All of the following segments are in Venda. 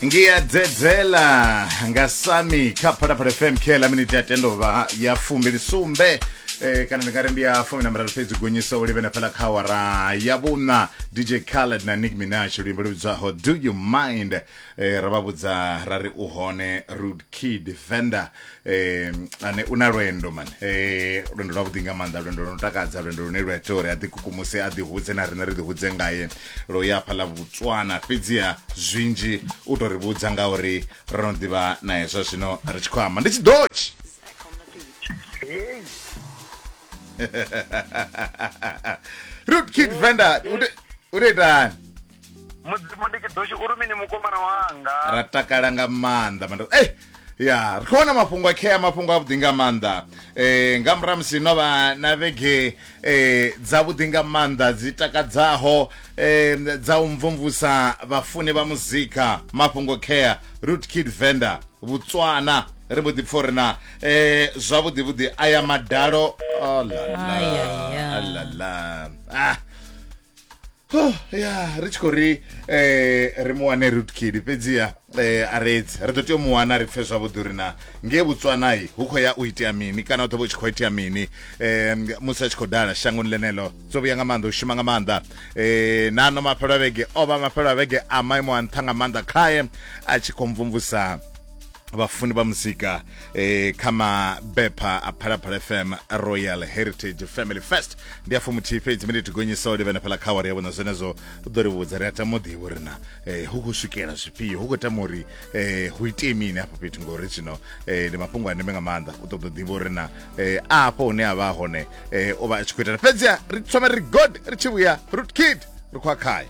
ngiyadzedzela nga sami kha phalaphala fm khela miniti ya tendovha ya fumbili sumbe eh, kana ndingari ndi ya fumi na miraru fhedzi gonyisa u livhena fhala kha awara ya vhuna dj khaled na nick minach luimbo lu vhidzwaho do you mind eh, ra vha vhudza ra ri u hone rude kid venda eh ane una lwendo man eh lwendo lwa vhuḓi nga maanḓa lwendo lwo takadza lwendo lune lwa ita uri a ḓikukumuse a ḓihudze na riṋe ri ḓihudze ngaye lo ya phala vhutswana fhedziha zwinzhi u tou ri vhudza nga uri ro no ḓivha na hezwa zwino ri tshi khou amba ndi tshidochi root kid venda u tou itani mudzimu ndi tshidoshi uri mini mukomana wanga ra takala nga maanḓa manda ey ya ri khou wana mafhungo a khea mafhungo avhuḓi nga maanḓa um nga murahu musi no vha na vhege um dzavhuḓi nga maanḓa dzi takadzaho um dza u mvumvusa vhafuni vha muzika mafhungo khea root kid venda vhutswana ri vho ḓipfa uri na um zwavhuḓi vhuḓi aya madalo oh, la, la, Ai, ai, ai. la, la. Ah, Oh, ya ri tshi khou ri eh, ri mu wane rutkidi fhedziha eh, a redzi ri ḓo tea u mu wana ri pfe zwavhuḓi uri na ngee botswanai hu khou ya u itea mini kana u ḓo vha u tshi khou itea mini eh, musi a tshi khou dala shangoni ḽeneḽo dzo vhuya nga maanḓa u shuma nga maanḓa eh, na ano mafhelo a vhege o vha mafhelo a vhege a maimo a nṱha nga maanḓa khae a tshi khou mvumvusa vhafuni vha muzika eh, kha mabepha a phalaphala fm royal heritage family fest ndi afho muthihi fhedzi mene tigonyisa u livhena fhala kha awari ya vhona zwenezwo u ḓo ri vhudza ri a tama u ḓivha uri na eh, hu khou swikela zwifhio hu khou tama uri eh, hu itee mini afho fhethu ngori zwino eh, ndi mafhungo a ndeme nga maanḓa u ṱoḓa u ḓivha uri na eh, afho hune a vha a hone eh, o vha a tshi khou itana fhedzi ri thoma ri god ri tshi vhuya root kid ri khou a khayo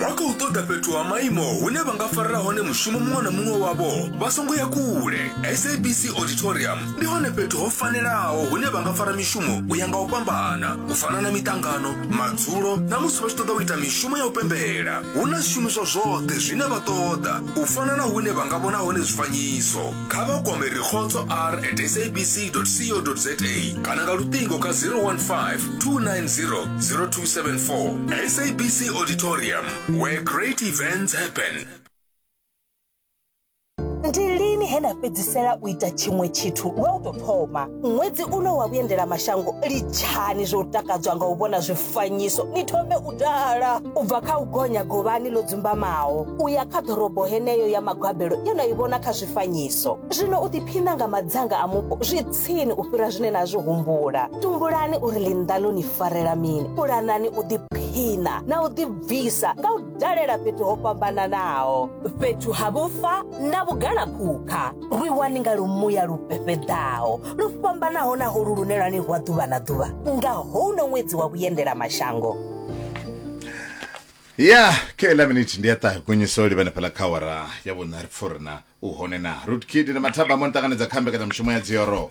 vha khou ṱoḓa fhethu ha maimo hune vha nga farela hone mushumo muṅwe na muṅwe wavho vha songo ya kule sabc auditorium ndi hone fhethu ho fanelaho hune vha nga fara mishumo u ya nga u fhambana u fana na miṱangano madzulo na musi vha tshi ṱoḓa u ita mishumo ya u pembela hu na zwishumiswa zwoṱhe zwine vha ṱoḓa u fana na hune vha nga vhona hone zwifanyiso kha vha kwame rikhotso r at sabc co za kana nga luṱingo kha 015 290 0274 sabc auditorium where great events happen ndi lini he na fhedzisela u ita tshiṅwe tshithu lwa u tou thoma ṅwedzi uno wa vhuendela mashango litshani zwo takadzwa nga u vhona zwifanyiso ni thome u Ḓala u bva kha u gonya govhani ḽo dzumbamaho u ya kha ḓorobo heneyo ya magwabelo ye na i vhona kha zwifanyiso. Zwino u ḓiphina nga madzanga a mupo zwi tsini u fhira zwine na zwi humbula. Tumbulani uri ḽinnḓa ḽo ni farela mini, pulanani u ḓiphina na u ḓibvisa nga u dalela fhethu ho fhambananaho, fhethu ha vhufa na vhugalaphukha. lu iwani nga lumuya lu fhefheḓaho lu fhambanaho na holu lune lwa ni rwa ḓuvha na ḓuvha nga houno ṅwedzi wa vhuendela mashango ya kela miniti ndi ya ṱahe kunyiso livhane fhala kha wara ya vhuṋa ri pfurina u hone na rutkid na mathaba mo ni ṱanganedza kha mbekanyamushumo ya dzioro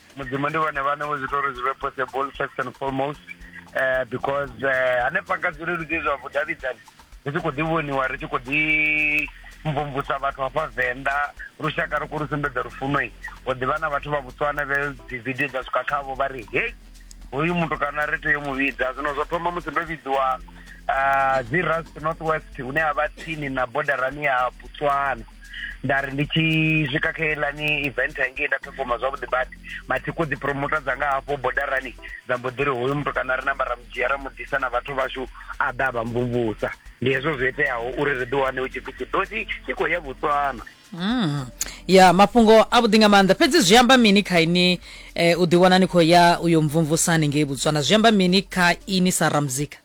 mudzimu ndi vhone vhane vho zwi ita uri zwi vhe possible first and foremost uh, because uh, hanefha nga zwileludzi zwa vhudavhidzani ri tshi khou ḓi vhoniwa ri tshi khou ḓi mvumvusa vhathu hafha venḓa lushaka ri khou lu sumbedza lufunoi ho ḓivha na vhathu vha vhutswana vhe dzividio dza swika khavho vha ri hei hoyu muthu kana ri tea mu vhidza zwino zwo thoma musi ndo vhidziwa uh, dzi rust north west hune ha vha tsini na bodarani ya botswana nda ri ndi tshi swika kha elani event hangei nda performa zwavhuḓi but mathiko dzi promoter dzanga hafho bodarani dza mbo ḓi ri hoyu muthu kana ri namba ra mudzhia ra muḓisa na vhathu vhashu a ḓa vha mvumvusa ndi hezwo zwo iteaho uri ri ḓi wane u tshipfi tshidosi tshi khou ya botswana Mm. ya mafhungo a vhuḓi nga maanḓa fhedzi zwi amba mini kha ini eh, u ḓiwana ni khou ya uyo mvumvusani ngei botswana zwi amba mini kha ini sa ramuzika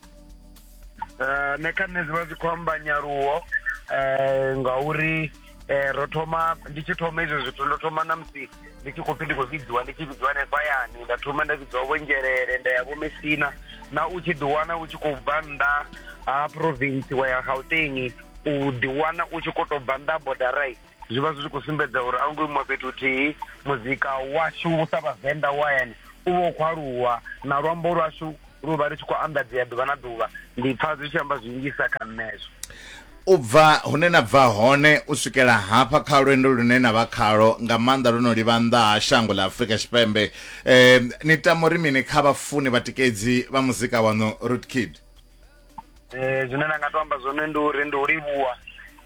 eh, nṋe kha nṋe zwivha zwi khou amba nyaluwo eh, ngauri eh, ro thoma ndi tshi thoma izwo zwithu ndo thoma na musi ndi tshi khou pfi ndi khou vhidziwa ndi tshi vhidziwa hanefha yani nda thoma nda vhidziwa vhonzhelele nda ya vhomesina na u tshi ḓiwana u tshi khou bva nnḓa ha province wa ya gauteng u ḓiwana u tshi khou tou bva nnḓa ha bodarai zwi vha zwi tshi khou sumbedza uri a hu ngo imiwa fhethu huthihi muzika washu u sa vhavenḓa wa hayani u vha u khou aluwa na luambo lwashu lu vha ri tshi khou anḓadzea ḓuvha na ḓuvha ndi pfa zwi tshi amba zwinzhisa kha nṋezwo u bva hune na bva hone u swikela hafha kha lwendo lune na vha khalo nga maanḓa lwo no livha nnḓa ha shango ḽa afurika tshipembe um ni tama uri mini kha vhafuni vhatikedzi vha muzika waṋu root kid eh zwine nda nga to amba zwone ndi uri ndi u livhuwa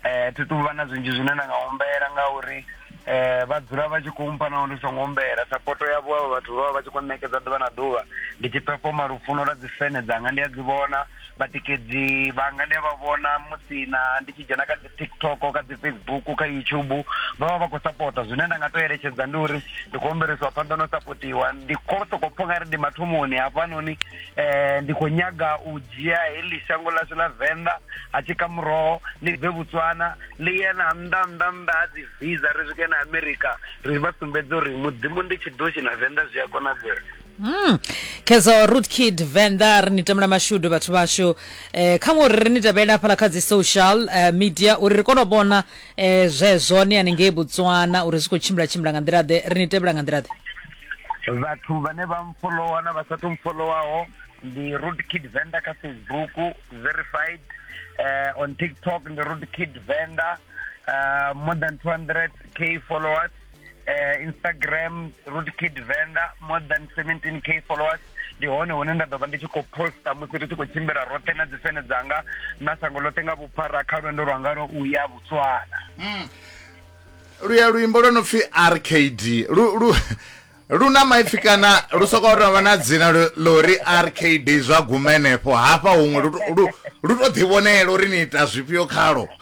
eh thi tu vha na zwinzhi zwine nda nga humbela ngauri eh vha dzula vha tshi khou mpha naho ndi songo humbela sapoto yavho avho vhathu vha vha vha tshi khou ṋekedza ḓuvha na ḓuvha ndi tshi pefoma lufuno lwa dzifene dzanga ndi a dzi vhona vhatikedzi vhanga ndi a vha vhona musi na ndi tshi dzhena kha dzi tiktok kha dzi facebook kha youtube vha vha vha khou sapota zwine nda nga to eletshedza ndi uri ndi khou humbelisiwa phanḓa no sapotiwa ndi khou sokou pfha nga ri ndi mathomoni hafhanoni um ndi khou nyaga u dzhia heḽi shango ḽashu ḽa venḓa ha tshi ka muroho ḽi bve botswana ḽi ye na nnḓa nnḓa nnḓa ha dzi visa ri swike na america ri vha sumbedze uri mudzimu ndi tshiḓoshi na venḓa zwi a konadzea Mm. Kezo Root Kid Venda ri ni tamela mashudu vhathu vhashu eh, kha ngori ri ni tevhela hafhala kha dzi social eh, media uri ri kone u vhona eh, zwezwo ni hanengei Botswana uri zwi khou tshimbila tshimbila nga nḓila ḓe ri ni tevhela nga nḓila ḓe vhathu vhane vha mfolowa na vha sathu mfolowaho ndi Root Kid Venda kha Facebook verified eh, on TikTok ndi Root Kid Venda uh, more than 200k followers eh, instagram root kid venda more than 17 k followers ndi hone hune nda ḓo vha ndi tshi khou posta musi ri tshi khou tshimbila roṱhe na dzifene dzanga na sango ḽoṱhe nga vhuphara kha lwendo lwanga lwo u ya botswana mm. luya luimbo lwo no pfi rkd lu, lu, lu na maipfi kana lu sokou tou vha na dzina ḽo ri rkd zwa guma henefho hafha huṅwe lu tou ḓivhonela uri ni ita zwifhio khalo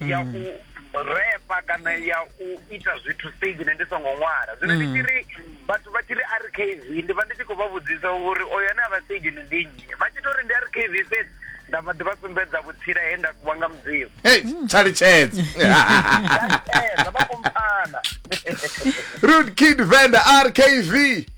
ya u repa kana ya u ita zwithu stage ne ndi songo ṅwala zwino ndi tshi ri vhathu vha tshi ri rkv ndi vha ndi tshi khou vha vhudzisa uri oyo ane a vha stage ni ndi nnyi vha tshi to ri ndi rkv fhedzi nda vha ḓi vha sumbedza vhutsila he nda kuwa nga mudzimu hey thaletshedze Vha tea, vha khou mpfana. rude kid venda rkv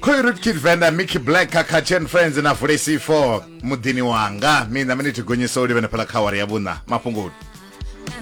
khoyu ri kid venda mickey black kakhachen friends na vulesi 4 muḓini wanga mina mini tigonyisa u livhena phala kha awara ya vhuṋa mafhungoni